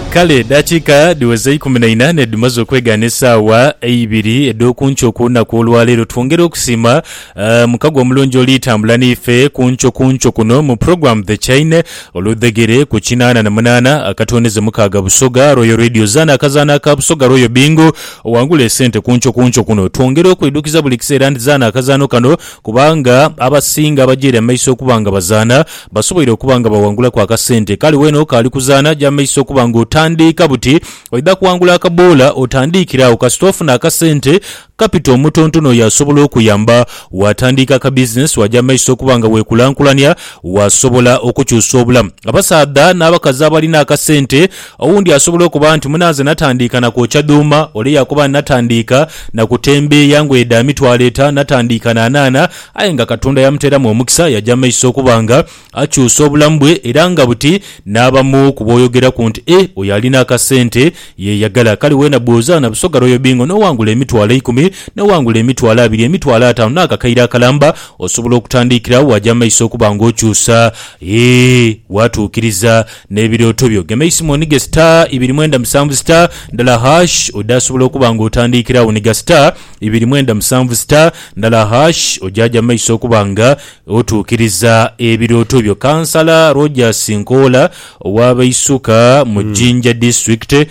Kale edaakiika dhiweza eikumi na inhaana dhimaze okwegaana esaawa eibiri edh'oku nkyo ku lunaku olwa leero. Twongera okusiima eh, mukago omulungi oli tambula naife ku nkyo ku nkyo kuno mu pulogulaamu The Chain oludhegere ku kinaana na munaana akatwoneze mukaaga Busoga Royal Radio. Zaana akazaanho aka Busoga Royal Bingo owangule esente ku nkyo ku nkyo kuno. Twongera okwidhukiza buli kiseera nti zaana akazaanho kano Kubanga abasinga abaja ere amaiso okuba nga bazaana, basoboire okuba nga bawangulaku akasente. Kale weena okaali kuzaana, aja amaiso okuba nga otandiika buti. Oidha kuwangula akaboola otandiikire agho kasita ofuna akasente, kapito, omutontono oyo asobola okuyamba. Waatandiika akabizinesi, waaja amaiso okuba nga weekulankulania, waasobola okukyusa obulamu. Abasaadha n'abakazi abalina akasente Owundi asobola okuba nti, Munanze natandiika na kwokya dhuuma. Ole yakoba nti, Natandiika na kutembeeya ngoye dha mitwalo eta. Natandiika na anaana. Aye nga Katonda yamuteeramu omukisa, yaja mu maiso okuba nga akyusa obulamu bwe era nga buti n'abamu ku b'oyogeraku nti, Eh, oyo alina akasente yeeyagala. Kale weena bw'ozaana Busoga Royal Bingo n'owangula emitwalo eikumi, n'owangula emitwalo abiri, emitwalo ataanu n'akakaire akalamba, osobola okutandiikira waja mu maiso okuba ng'okyusa. Yee, waatuukiriza. N'ebirooto byo gema eisimoni ghe star ibiri mwenda musanvu star ndala hash odhasobola okuba nga otandiikira agho ni gha star ibiri mwenda musanvu star ndala hash ojaja mu maiso okuba nga otuukiriza ebirooto byo. Kansala Rogers Nkoola owa Baisuka mu Jinja District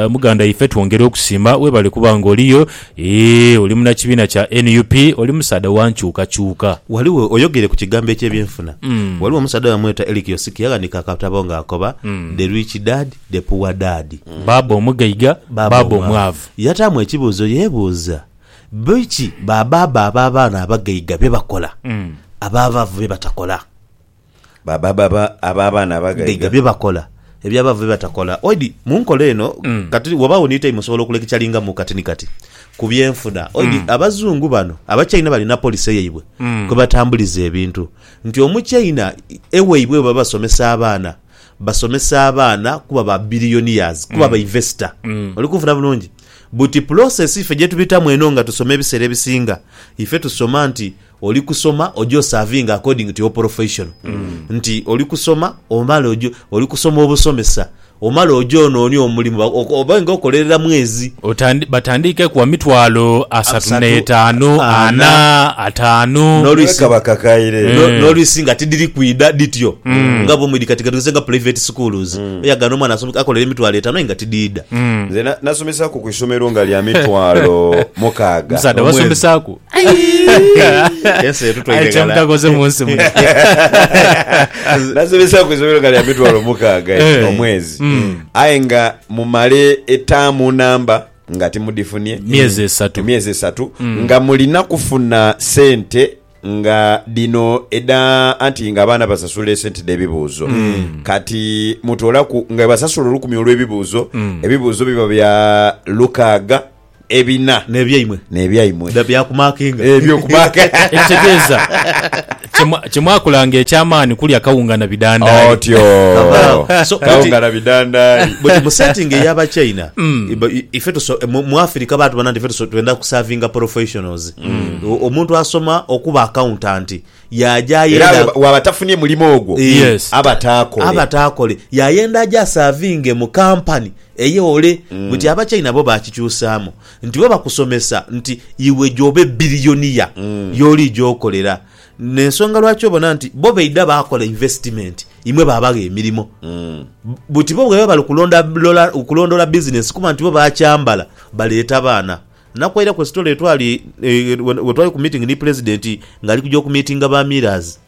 muganda ife twongera okusiima webale kuba nga oliyo. Eeh oli munakibiina kya nup oli musaadha wa nkyukakyuka. Ghaligho, oyogeire ku kigambo eky'ebyenfuna, ghaligho omusaadha bamweta Eric Osiki yaghandiika akatabo nga akoba, The Rich Dad, The Poor Dad. Bbaabba omugaiga, bbaabba omwavu. Yataamu ekibuuzo yeebuuza, Biki ba bbaabba ab'abaana abagaiga bye bakola, ab'abavu bye batakola? Baba baba aba abaana abagaiga. Gaiga bye bakola ebyo abaavu bye batakola. Oidi mu nkola eno kati wabaawo ni tayimu osobola okulekicalingamu kati ni kati ku byenfuna. Oidi Abazungu bano Abachaina balina polisi eyaibwe kwe batambuliza ebintu nti Omuchaina ewaibwe bwe baba basomesa abaana, basomesa abaana kuba ba billionaires, kuba ba investor. Oli kunfuna bulungi? Buti pulosesi ife gye tubitamu eno nga tusoma ebiseera ebisinga, ife tusoma nti. Oli kusoma oje osavinge according to your profession nti oli kusoma omale oje oli kusoma obusomesa omale oje onoonie omulimu ba- oko- obe nga okolerera mwezi Otandi- batandiike ku wa mitwalo asatu Asatu, n'etaanu ana, ana, ataanu N'olu- Lwisi. Kabakakaire. No- Mm. nolwisi nga tidiri kwida dityo nga bumwidi kati gatugeze nga private schools oyagana omwana asome- akolere emitwalo etano aye nga tidiida Nze na- nasomesaku ku isomero nga lya mitwalo mukaaga. musaadha Omwezi. basomesaku Ensi etutwaire Aye ghala. kyemutakoze mu nsi muno. nasomesa ku isomero nga lya mitwalo mukaaga Eh. ekyo omwezi Mm. aye nga mumale etaamu namba nga timudifunye Myezi esatu. emyezi esatu Mm. nga mulina kufuna sente nga dino eda anti nga abaana basasula esente debibuuzo Mm. kati mutolaku nga basasula olukumi olwebibuuzo Mm. ebibuuzo biba bya lukaaga ebina. N'ebyaimwe. N'ebyaimwe. Biba bya kumaakinga. Eby'okumaaka. Ekitegeeza, kye mwakolanga eky'amaani kulya kawunga na bidandaali. Otyo. Kabaagho. So, buti. Kawunga na bidandaali. Buti mu setting ey'Abachina, ife tuso, mu, mu Africa baatubona nti ife tuso, twenda kusavinga professionals. Omuntu asoma okuba accountant, Yaaja Era ayenda bw'aba- bw'aba tafunye mulimo ogwo, Eh, Yes. aba taakole. aba taakole yayenda aje asaavinge mu kampani eyole buti abachina bo bakikyusaamu nti bo bakusomesa nti iwe gy'oba ebbiliyoniya y'oliija okolera n'ensonga lwaki obona nti bo baidha baakola investment imwe baabagha emirimo buti bo bwebaba bali kulonda- lola- kulondoola bizinensi kuba nti bo bakyambala baleeta baana Nakwairaku esitole lwe twali lwe twali ku meeting ni Pulezidenti ng'ali kuja okumiitinga ba Miilers.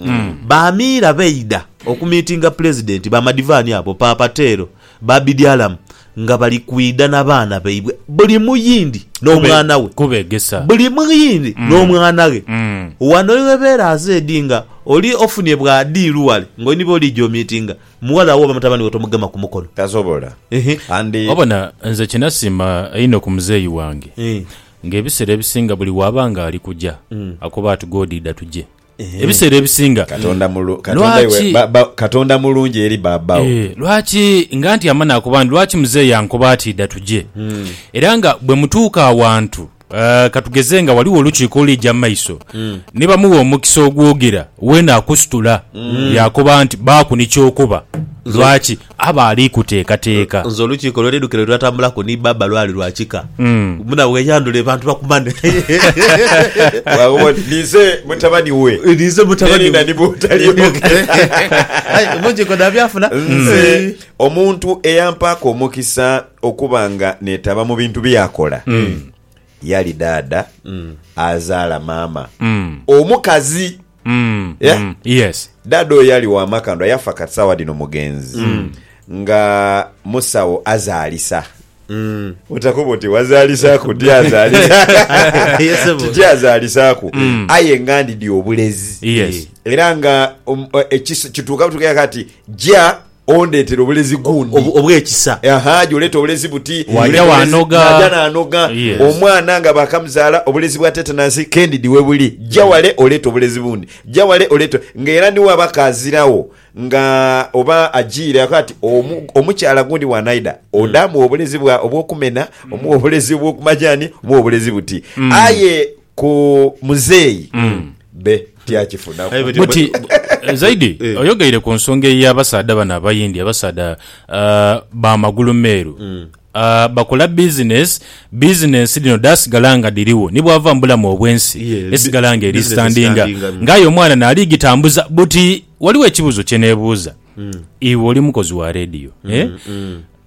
Ba Miira baidha okumiitinga Pulezidenti, ba Madivani abo, Paapa Teero, ba Bidialam nga bali kwidha na baana baibwe buli muyindi n'omwana we. Kubeegesa. Buli muyindi n'omwana ghe. Ghano iwebeera azedi nga oli ofunie bwa diiru ghale ng'oli ni b'oliija omiitinga. Mughala wo oba mutabani wo tomugema ku mukono. Tasobola. And. Obona, nze kye nasiima einho ku muzeeyi wange, ng'ebiseera ebisinga buli w'aba ng'ali kuja akoba ati, God idha tuje. Ebiseera ebisinga. Katonda mulungi. Katonda iwe bba, Katonda mulungi eri bba wo. Ee, lwaki nga ntyama n'akoba nti, Lwaki muzeeyi ankoba ati idha tuje? Era nga bwe mutuuka awantu Ah, ka tugeze nga ghaligho olukiiko oluliija mu maiso, ni bamugha omukisa ogwogera, weene akusitula yaakoba nti, Baaku ni ky'okuba. Lwaki? Aba ali kuteekateeka. Nze olukiiko lwe nidhukira lwe twatambulaku ni bbaabba lwali lwa kika. Mbu nawe weyandhule bantu bakumane. Bwaghoba oti, Ninze mutabani we. Ninze mutabani we. N'erinha ni bw'otaliimu. Aye olukiiko naabyafuna. Nze omuntu eyampaku omukisa. okuba nga netaba mu bintu byeyakola yali daada azaala maama omukazi Yeah. Mm, yes daada oyo yali wamakandwa yafa kati sawa dino mugenzi nga musawo azaalisa otakuba oti wazalisaku ti azalisa Yes, sebo. titi azalisaku aye nga ndidi obulezi Yes. era nga um, eh, ekis- kituuka butuuka kati ja Ondeetera obulezi gundi. Obw'ekisa. Aha, aja oleeta obulezi buti. Waja waanoga. Naaja naanoga. Yes. Omwana nga baakamuzaala, obulezi bwa tetanasi kendidi webuli. Ja wale oleete obulezi bundi. Ja wale oleete, nga era ni waba kaaziragho nga oba ajiire ako ati omu, omukyala gundi bw'anaidha, ode amuwe obulezi bwa, obw'okumena, omuwe obulezi obw'okumajaani, omuwe obulezi buti. Aye ku muzeeyi be tyakifunaku. Aye bwetyo- Buti bwe- eh, Zaidi Eh. oyogeire ku nsonga ey'abasaadha bano Abayindi abasaadha ah, ba magulu meeru Ah, bakola bizinesi bizinesi dhino dhasigala nga dhiriwo ni bwava mu bulamu obw'ensi Yeah, esigala nga eri business standinga standinga, mm. ng'aye omwana naali gitambuza buti waliwo ekibuuzo kye neebuuza iwe oli mukozi wa rediyo eh?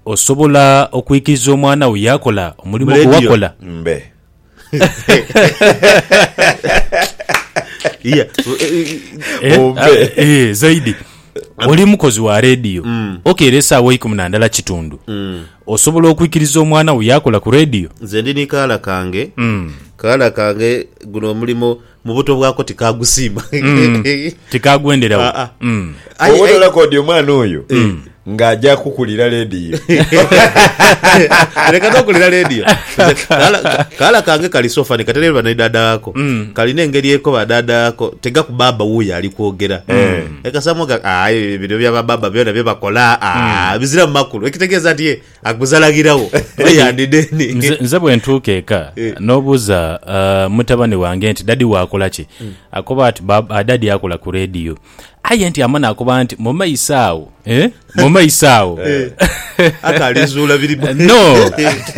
osobola okwikiriza omwana wo yakola omulimu Mu gwe radio. wakola Mbe. Yeah. Eh, Ombe. ah, eh, zaidi oli mukozi wa rediyo Mm. okeera esaawa eikumi na ndala kitundu osobola okwikiriza omwana wo yakola ku rediyo nze ndi ni kaala kange Mm. kaala kange guno omulimu mu buto bwako tikagusiima Mm. Tikagwenderawo. Ah, ah. Mm. Aye- Oba aye- tolakoodya omwana oyo nga aja kukulira leediyo leka nokulira leediyo Kala- kala kange kali sofani katereba ne dada wako Mm. kalina engeri eko badada wako tegakubaba wuyo ali kwogera ekasamoga aye bino byabababa byona byebakola ah, biziramu makulu ekitegeeza nti ye Agbuza laghiragho oba yandi deni. Nze, nze bwe ntuuka eka, Eh. n'obuuza ah, mutabane wange nti dadi wo akola ki? Akoba ati ba, ah, dadi akola ku rediyo. Aye nti ama n'akoba nti mu maiso agho, eh, mu maiso agho. Ate alizuula biri mu- no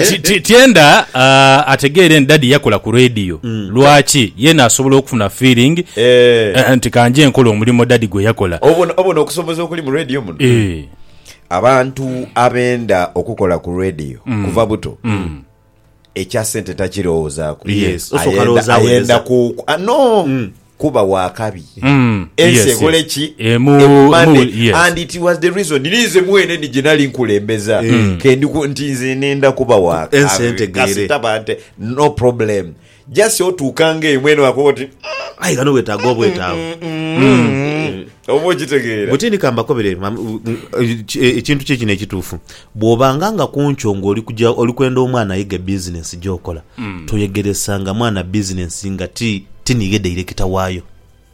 ti- ti- tyenda ah, ategeere nti dadi yakola ku rediyo lwaki yeena asobola okufuna feeling Eh. eh, nti kanje nkola omulimo dadi gwe yakola Obona obona okusoboza okuli mu radio muno. Eh. Abantu abenda okukola ku radio mm. kuva buto mm. ekya sente takirowoozaako yes. ayenda, ayenda ku ah, no mm. kuba wakabi mm. ensi yes, ekole yes. ki eh, emane yes. and it was the reason ninze mwene ni gyenali nkulembeza mm. kendi nti nze nenda kuba wakabi kasita bante no problem Just otuukanga eyo mwene wakoba oti "Mm, Aye ghano wetaaga obwetaavu. mm, mm, mm." oba okitegeera Bwe tindika mbakobere mam- u- u- eki- e- ekintu kye kino ekituufu bw'obanga nga ku nkyo ng'oli kuja oli kwenda omwana ayige bizinensi gy'okola toyegeresanga mwana bizinensi nga ti ti niye dairekita waayo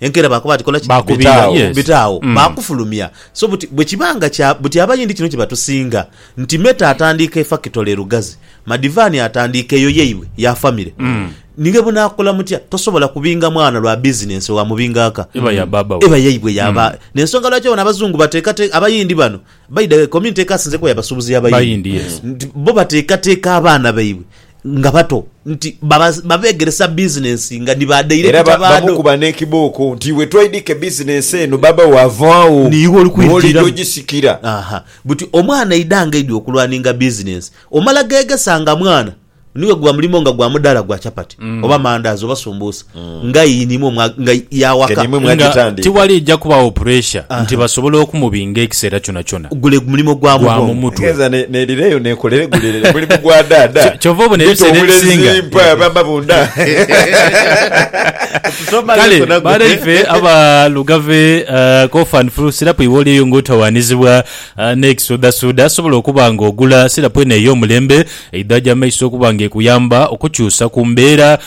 Enkeera baakoba ati, Kola ki? Baakubira Bita agho, agho. Yes. bita agho. Mm. Baakufulumya. So buti, bwe kiba nga kya, buti Abayindi kino kye batusinga, nti Meta atandiika efakitole e Lugazi, Madivani atandiika eyo yaibwe ya famire, ninga bwe naakola mutya, tosobola kubinga mwana lwa bizinensi oyo amubinga aka. Eba ya baaba we. Eba yaibwe ya ba. N'ensonga lwaki obona Abazungu bateekateeka, Abayindi bano, by the way, community ekasinze kuba ya basuubuzi y'Abayindi. Bayindi, yes. Nti bo bateekateeka abaana baibwe nga bato nti babeegeresa bizinensi nga ni ba dairekita baadho. Era bamukuba n'ekibooko nti, Iwe twaidhika ebizinensi eno, baba wo ava agho, niiwe oli kwidha ogisikira. Aha! Buti omwana aidha ng'aidha okulwaninga bizinensi, omala gheegesa nga mwana, niwe gwa mulimo nga gwa mudaala gwa chapati oba mandaazi oba sumbuusa. nga yinimwe mwa, nga y'awaka. Nga tiwaliija kubagho puresha nti basobola okumubinga ekiseera kyonakyona. Gule mulimo gwa mu bwongo. Egenza n'edhireyo n'ekolere gule mulimu gwa dhaadha. Kyova obona ebiseera ebisinga. Bita obulezi, mpa amabunda. Kale, baana ife aba Lugave, cough and flu sirapu iwe oli eyo nga otawaanizibwa n'ekisuudhasuudha, asobola okuba nga ogula sirapu eno ey'omulembe eidhagya amaiso okuba nga ekuyamba okukyusa ku mbeera.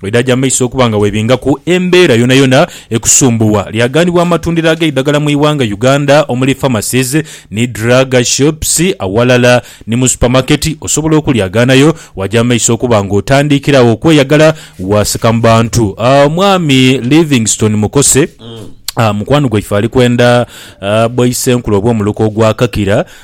Bwedhaja mu maiso okuba nga webingaku embeera yonayona ekusumbuwa, lyaghanibwa amatundiro ag'eidhagala mu ighanga Uganda omuli pharmacies ni drug shops awalala ni mu supamaketi. Osobola okulyaghaanayo waja mu maiso okuba nga otandiikira agho okweyagala waasika mu bantu. Omwami Livingstone Mukose, mukwano gwaife ali kwenda bwa Isenkulu obw'omuluka ogwa Kakira.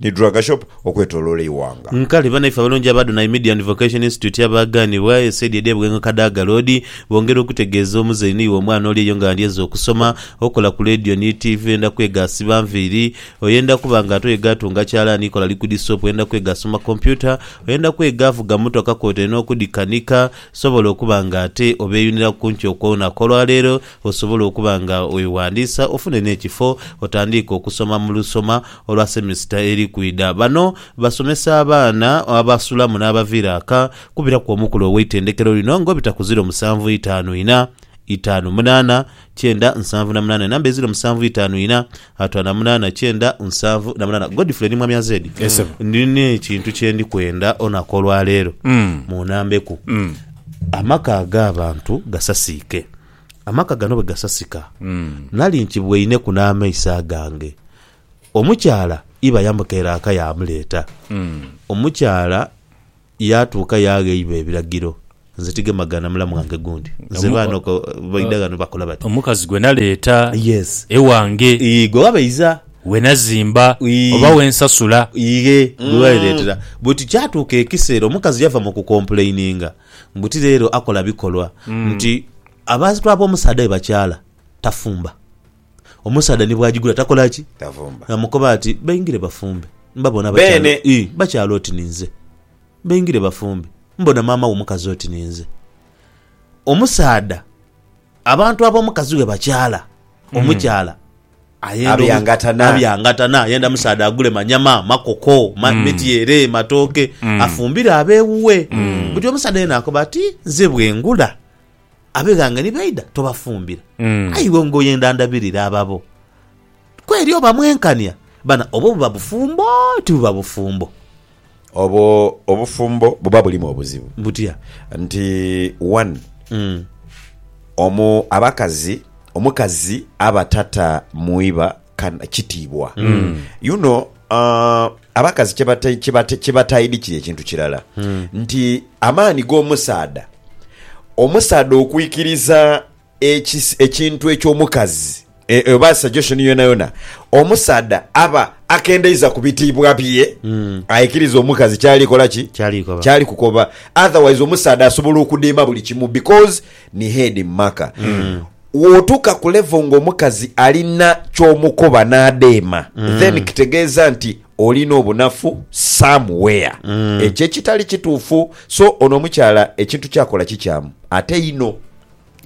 ni Drug Shop okwetoloola eighanga. Nkale banaife abalungi aba Adonai Media and Vocation Institute abaaganibwa e saidi edh'e Bughenga Kadaga Road bongera okutegeeza omuzeeyi ni iwe omwana oli eyo nga andyeza okusoma, okola ku leediyo ni tiivi, oyenda kwega asiba nviiri, oyenda kuba nga ate oyega atunga kyalaani, kola likudi soopu, oyenda kwega asoma kompyuta, oyenda kwega avuga mmotoka kwotaire n'okudhikanika, sobola okuba nga ate obeeyuniraku ku nkyo kw'olunaku olwaleero. Osobole okuba nga weghandiisa ofune n'ekifo otandiike okusoma mu lusoma olwa semisita eri kwidha. Bano basomesa abaana abasulamu n'abaviira aka kubiraku omukulu ow'eitendekero lino nga obita ku ziro musanvu itaanu ina, itaanu munaana, kyenda nsanvu na munaana enamba eziro musanvu itaanu ina, Atwala munana kyenda nsanvu na munana. Godfrey ni mwami Azedi. Yes, sebo. Nina ekintu kyendi kwenda onaku olwaleero Mm. munambeku. Mm. Amaka ag'abantu gasasiike. Amaka gano bwe gasasika Mm. nali nkibweineku n'amaiso agange. Omukyala iba yamukeera aka yamuleeta. Mm. Omukyala Yaatuuka yaagheiba ebiragiro, nze tigemagana mulamu wange gundi. Nze baana oko baidha ghano bakola bati. Omukazi gwe naleeta Yes. ewange, Ii, gwe wabeiza. we nazimba Ii. oba we nsasula. Ighe, gwe waleetera. But kyatuuka ekiseera omukazi yava mu kukompuleininga mbu ti leero akola bikolwa nti abantu ab'omusaadha be bakyala tafumba. Omusaadha ni bw'agigula takola ki? Tavumba. Ng'amukoba ati, Baingire bafumbe. Mbabona bakyali, ii, bakyali oti ninze. Baingire bafumbe. Mbona maama wo mukazi oti ninze. Omusaadha, abantu ab'omukazi we bakyala, hmm. omukyala ayenda abyangatana, abyangatana ayenda musaadha agule manyama, makoko, ma, mm. mityere, matooke mm. afumbire ab'ewuwe mm. buti omusaadha yena akoba ati nze bwengula Abeghanga ni baidha tobafumbira, aye iwe ngoye ndandabirire ababo. Kweri oba mwenkania bana obwo buba bufumbo tibuba bufumbo? Obwo obufumbo buba bulimu obuzibu. Butya? Nti wani omu abakazi omukazi aba tata mu iba kana kitiibwa you know uh, abakazi kyebata- kyebata- kyebataidikira ekintu kirala nti amaani g'omusaadha omusaadha okwikiriza ekis- ekintu eky'omukazi e- e- oba suggestion yona yona omusaadha aba akendeiza ku bitiibwa bye aikiriza omukazi kyali kola ki Kyali koba. kyali kukoba otherwise omusaadha asobola okudiima buli kimu because ni head mumaka Wotuuka ku level nga omukazi alina kyomukoba nadheema then kitegeeza nti olina obunafu some where ekyo ekitali kituufu so ono omukyala ekintu kyakola kikyamu ate inho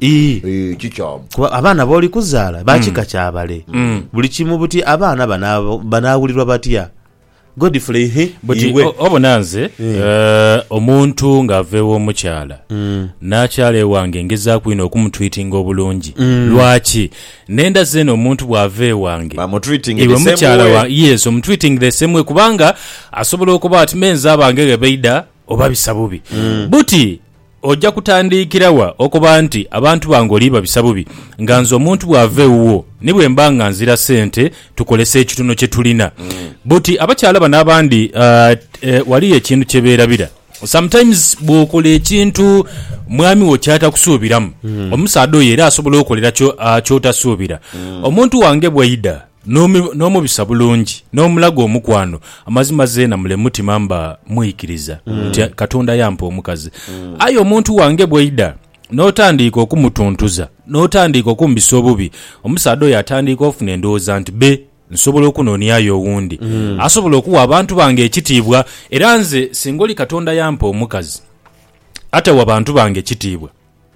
Ii. Eeh kikyamu. Kuba abaana b'oli kuzaala ba kika kya bale. Buli kimu buti abaana banaawulirwa batya? Godfrey, Hii, Buti iwe. o- obona nze eh, omuntu ng'ava ew'omukyala n'akyala ewange ngezaaku inho okumutwitinga obulungi lwaki nenda zeena omuntu bw'ava ewange Bamutreating the iwe same mukyala way. wa yes omutwiting the same way kubanga asobola okuba ati menze abange ghe baida obabisa bubi buti Oja kutandiikira wa okoba nti abantu bange oli babisa bubi, nga nze omuntu bw'ava ewuwo ni bwe mba nga nzira sente tukolese ekitono kye tulina? Buti abakyala bano abandi waliyo ekintu kye beerabira. Sometimes bw'okola ekintu mwami wo ky'atakusuubiramu, omusaadha oyo era asobola okukolera ky'otasuubira. Omuntu wange bw'aidha N'omubisa bulungi, n'omulaga omukwano, amazima zeena mule mutima mba mwikiriza nti Katonda yampa omukazi. Aye omuntu wange bw'aidha n'otandiika okumutuntuza, n'otandiika okumbisa obubi, omusaadha oyo atandiika ofuna endowooza nti be nsobola okunoniayo owundi asobola okuwa abantu bange ekitiibwa. Era nze singa oli Katonda yampa omukazi atawa bantu bange kitiibwa,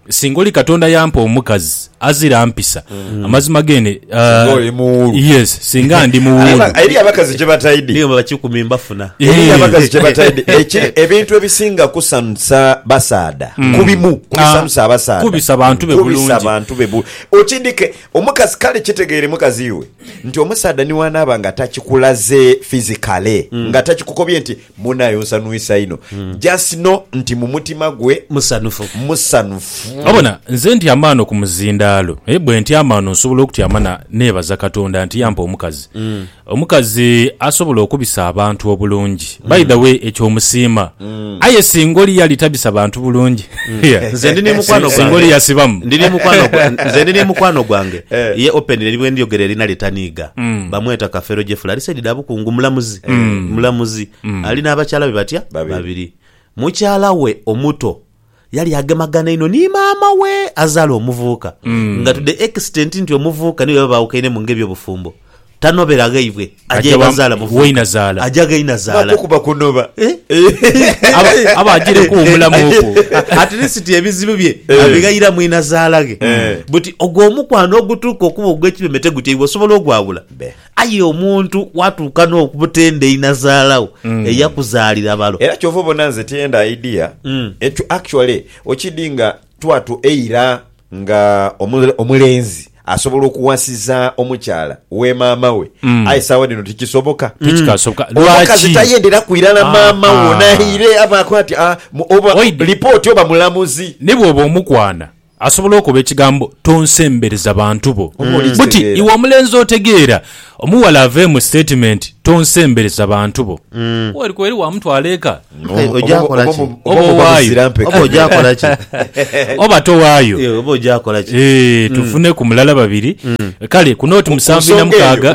Singa oli Katonda yampa omukazi azira mpisa, mm. amazima gene uh, oli muwulu. Yes, singa ndi muwulu. Eri abakazi gye bataidi. Niyo bakikumi mbafuna. Eri abakazi gye bataidi. Ekiri ebintu ebisinga kusanusa basaada. Mm. Kubimu kubisanusa ah, abasaada. Kubisa bantu be bulungi. Kubisa bantu be bulungi. Okindike omukazi kale kitegeere mukazi iwe nti omusaada niwanaaba nga takikulaze physically mm. nga takikukobye nti Munaye onsanwisa inho. Just know nti mu mutima gwe. Musanhufu. Musanhufu. Obona, nze ntyama ghano ku muzindaalo. Aye bwe ntyama ghano nsobola okutyama na neebaza Katonda nti yampa omukazi. Omukazi asobola okubisa abantu obulungi. By the way, ekyo omusiima. Aye singa oli yali tabisa bantu bulungi, Nze ndi ni mukwano singa oli gwange. yasibamu. Ndi ni mukwano gwa- nze ndi ni mukwano gwange. Ye openly ni bwe ndyogera erina lye taniiga. Bamweta Kafeero Jeffrey. Ali saidi dha Bukungu. Mulamuzi. eh, mulamuzi ali n'abakyala be batya Babiri. babiri mukyala we omuto yali agemagana inho ni maama we azaala omuvubuka nga to the extent nti omuvubuka niwe baba baawukaine mu ng'ebyobufumbo tanobera ghaibwe Aja aja wa- bazaala muvubuka wainazaala. aja ghainazaala Bakukuba kunoba. Eh? Aba- aba agireku omulamu okwo. at least ebizibu bye Eh. abighaira mwinazaalaghe buti ogwo omukwano ogutuuka okuba ogw'ekibeme tegutya iwe osobola ogwawula Be. Aye omuntu watuuka n'okubutenda einazaala wo eyakuzaalira balo. Era kyova obona nze tiyenda idea ekyo actually okidi nga twatu eira nga omulenzi asobola okuwasiza omukyala we maama we aye sawa dino tikisoboka omukazi tayendera kwirala maama wo naire abaako ati oba report oba mulamuzi nibwoba omukwana. Asobola okuba ekigambo tonsembereza bantu bo. Buti iwe omulenzi otegeera, omughala aveemu sitatimenti tonsembereza bantu bo. Kweri kweri wamutwala eka? Oba owaayo? Oba towaayo? Eeh, tufuneku mulala babiri. Kale kuno oti musanvu inha mukaaga.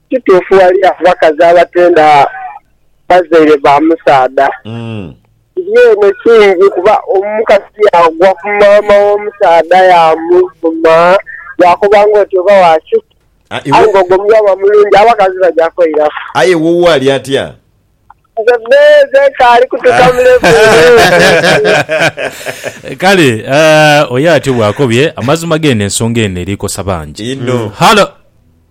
Kituufu ghali abakazi abatenda bazaire ba musaadha. Kiri eno kingi kuba omukazi yaagwa ku maama w'omusaadha yaamuvuma, yaakoba ng'oti oba wa kiki. Aye ng'ogwo muyaba mulungi, abakazi baja kweiraku. Aye woowe ali atya? Nze bbeeze nkaali kutuuka mu level eyo. Kale oyo atyo bw'akobye amazima geene ensonga eno eri kosa bangi. Inho. Halo.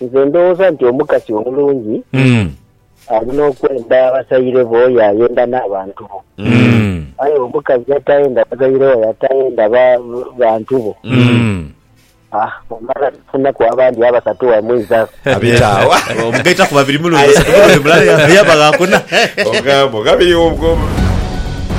Nze ndowooza nti omukasi omulungi alina okwenda abasaire be oyo ayenda n'abantu bo. Aye omukazi atayenda bazaire bae atayenda ba, bantu bo, ah, omala nofunaku abandi abasatu wamwiza. Abita agho. Obo mugaitaku babiri mulundi, basatu mulundi mulala yaba gha kuna. Ogamba ogha biri obwo.